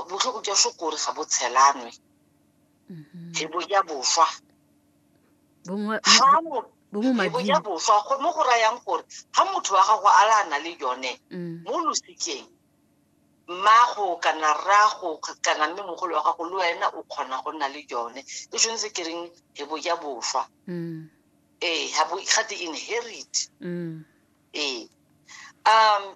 botlhoko jwa sho kore ga bo tshelanwe mm-hmm. phebo ya boswa phebo ya boswa mo go rayang gore ga motho wa gago a la na le yone mm. mo losikeng mmago kana rrago kana mme mogolo wa gago le wena o kgona go nna le yone e tshwanetse ke reng phebo ya boswa mm. ee ga te inherit mm. ee um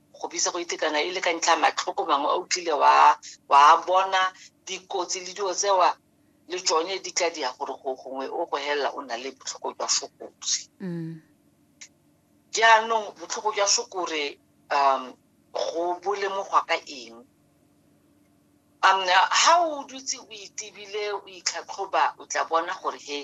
go bitsa go itekana e le ka ntlha matlhoko mangwe a utlile wa wa bona dikotsi le dilo tsewa le tsone di tla dia gore go gongwe o go helela o na le botlhoko jwa sokotsi mm. jaanong botlhoko jwa sokore um go bolemogwa ka eng um ha o dutse o itebile o itlhatlhoba o tla bona gore he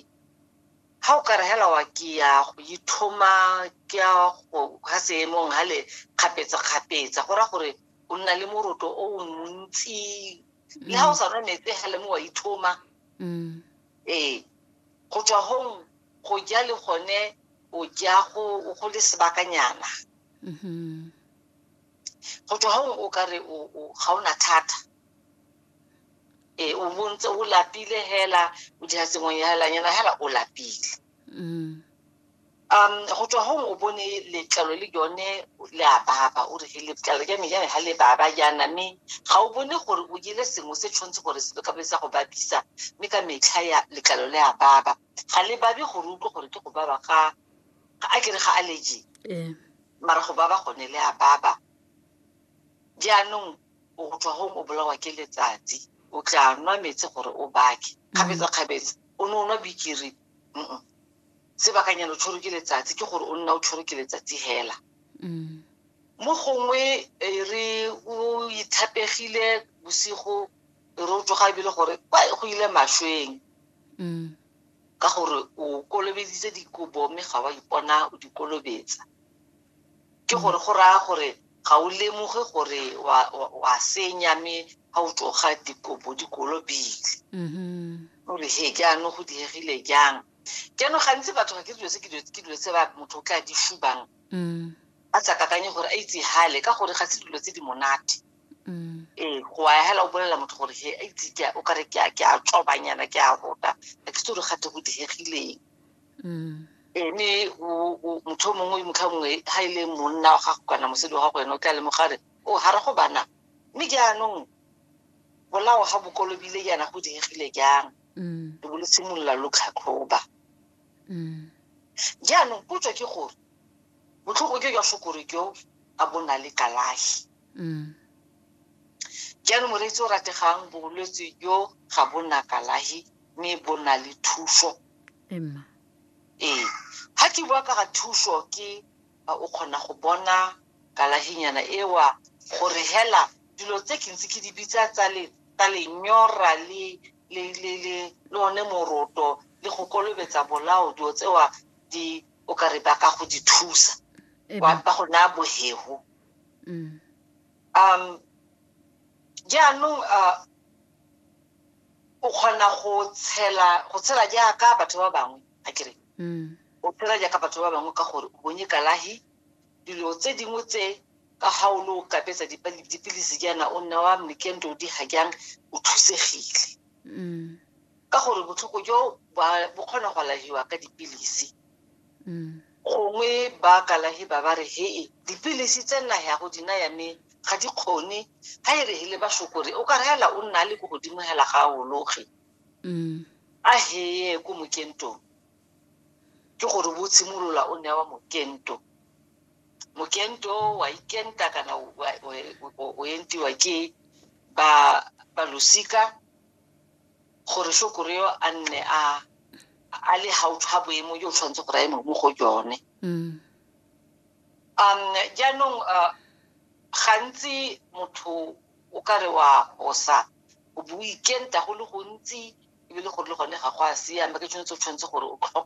ga o ka re helawa ke ya go ithoma ke ya go ga seemong ga le kgapetsa-kgapetsa go ra gore o nna le moroto o o montsi le ga o sa nwa metsi ga le mo wa ithoma Mm. ee go tswa gong go ja le gone o ja go go le sebakanyana Mhm. go tswa gong o ka re o- o- ga o na thata e o bontse o lapile hela o dira sengwe helanyana hela o lapile mm. um go tswa gong o bone letlalo le yone le a baba o re letlalo ja me jane ga le baba jaana mme ga o bone gore o jele sengwe se tshwanetse gore se ka be sa go babisa mme ka metlha ya letlalo le a baba ga le babe gore utlwe gore ke go baba ga a kere ga allergy mara go baba gone le a baba jaanong o go tswa gong o bolawa ke letsatsi o tla nwa metsi gore o bake kgabetsa-kgabetsa o ne o nwa bikiri Mm-mm. sebakanyana o tshwere ke letsatsi ke gore o nna o tshwere ke letsatsi hela Mm. mo gongwe e re o ithapegile bosigo e re o tsoga ebile gore kwa go ile mašweng Mm. ka gore o kolobeditse dikobo mme ga wa ipona o di kolobetsa Ke gore go raya gore ga o lemoge gore wa, wa, wa senya mme ga o tloga dikobo di kolobile o re he jaanong go diegile jang jaanong gantsi batho ga ke dilo tse ke dilo ke dilo tse ba motho o tla di shubang a sa kakanye gore a itse hale ka gore ga se dilo tse di monate ee go a hela o bolelela motho gore he a itse ke a- o kare ke a ke a tsobanyana ke a rota ga ke se gore gate go diegileng ene motho o mongwe motlha mongwe ga e le monna wa gago kana mosadi wa gago ene o tla lemogare o ga re go bana mme jaanong bolao ga bokolobile jaana go diegile jang lo bo lo simolola lo tlhatlhoba jaanong potso ke gore botlhogo jo jwa sokore jo a bo na le kalafi Jalo moreetsi o rategang bolwetse jo ga bo na kalahi mme bo na le thuso. Emma. Ee, ga ke bua ka ga thuso ke o kgona go bona kalahinyana ewa gore hela dilo tse ke ntse ke di bitsa tsa le tsa lenyora le le le le le one moroto le go kolobetsa bolao dilo tsewa di o ka re ba ka go di thusa ba go naya bohego. Mm. Um, jaanong uh, o kgona go tshela go tshela jaaka batho ba bangwe a kere mm. o tshela jaaka batho ba bangwe ka gore o bonye kalahi dilo tse dingwe tse ka ga o le o kapetsa dipilisi jaana o nna wa mekento di ga jang o thusegile mm. ka gore botlhoko jo bo kgona go alahiwa ka dipilisi mm. gongwe ba kalahi ba ba re hee dipilisi tse nna ya go dina ya me ga di kgone ga e re hele basokore o ka reela o nna le ko godimo hela ga a ologe mm. a heye ko mokentong ke gore bo tshimolola o newa mokento mokento wa ikenta kana o entiwa ke ba balosika gore shokoro yo a nne a a le gaufi ga boemo jo o tshwanetse gore a eme mo go jone mm. um jaanong uh, gantsi motho o ka re wa gosa o boikenta go le gontsi ebile gore le gone ga go a siama ke tshwanetse o tshwanetse gore o tlhokomele